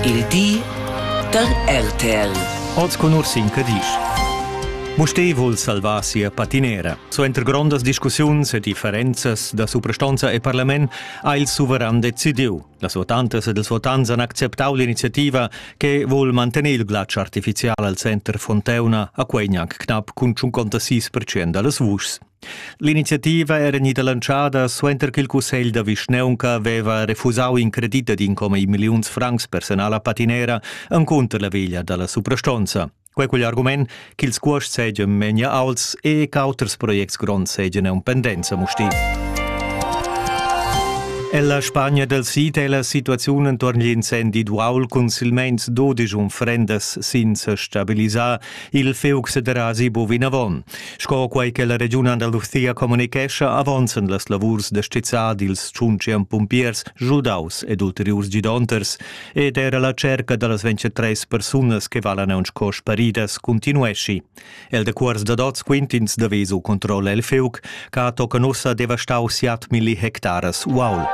Il di da RTL. Oz con Ursin Cadisch. Musté vul salvar sia patinera. Suenter grondas discussiuns e differenzas da suprastonza e parlament ha il suveran decidiu. Las votantas ed ils votants han acceptau l'iniziativa che vul mantener il glatsch artificial al center Fonteuna a quei gnanc knapp cun 56% dallas vuschs. L'iniziativa era gnida lantschada suenter ch'il cussegl da vischnaunca aveva refusau in credit ad incomi milliuns francs personal a patinera encunter la veglia dalla suprastonza. Quei cugl argument ch'ils cuosts seigien memia aults e ch'auters projects gronds seigien en pendenza musti. Ella Spagna del Sid è la situaziun entorn l'incendi d'uaul cun silmeins 12 unfrendas sin se stabilisar Il fiug sederà sibo vinavon, sco quei che la regiun Andalusia communicescha avonzen las lavurs da stizzar dils tschuntschem pumpiers giudaus ed ulteriurs gidonters ed era la cerca dallas 23 persunas che valan aunc sco sparidas continuesci. El de cuors da dots quintins da vesu controlla il fiug, ca tocan ussa devastau siat milli hectares. Wow!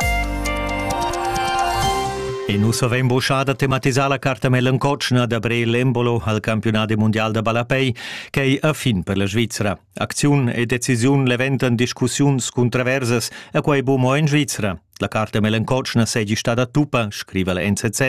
E nu savein boschada tematisar la carta melancotschna da Bre Lembolo al campionat mondial da ballapei, ch'ei a fin per la Svizzera. Acziun e decisiun leventan discussiuns cuntraversas a quei buca mo in Svizzera. La carta melancotschna seigi stada tuppa, scriva la NZZ,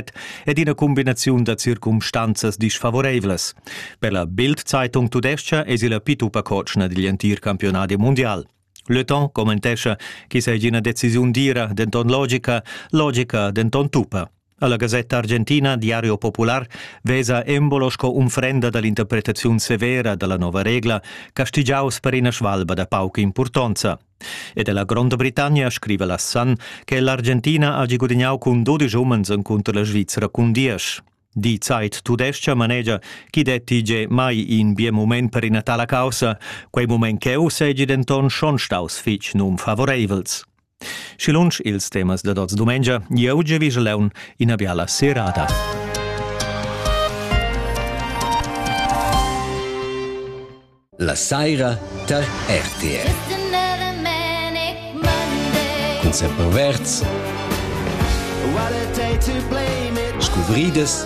ed ina cumbinaziun da circumstanzas disfavoreivlas. Per la Bild-Zeitung tudescha esi la pituppa cotschna digl entir campionadi mundial. Le Temps commentescha che seigi ina decisiun dira, denton logica, logica, denton tuppa. Alla Gazzetta Argentina Diario Popular vesa embolo sco unfrenda dall'interpretaziun severa dalla nova regla castigiaus per ina svalba da pauca impurtonza. Ed ella Gronda Britannia scriva la Sun che l'Argentina hagi gudignau cun 12 umens encunter la Svizzera cun diesch. Die Zeit tudescha manegia chi detti ge mai in bien moment per ina tala causa, quei moment cheu segi denton schon staus fitg nunfavoreivels. Schi lunsch ils temas dad oz dumengia, jeu gievigel leun ina biala serada. La saira tar RTR. Con semperverts. Scuvridas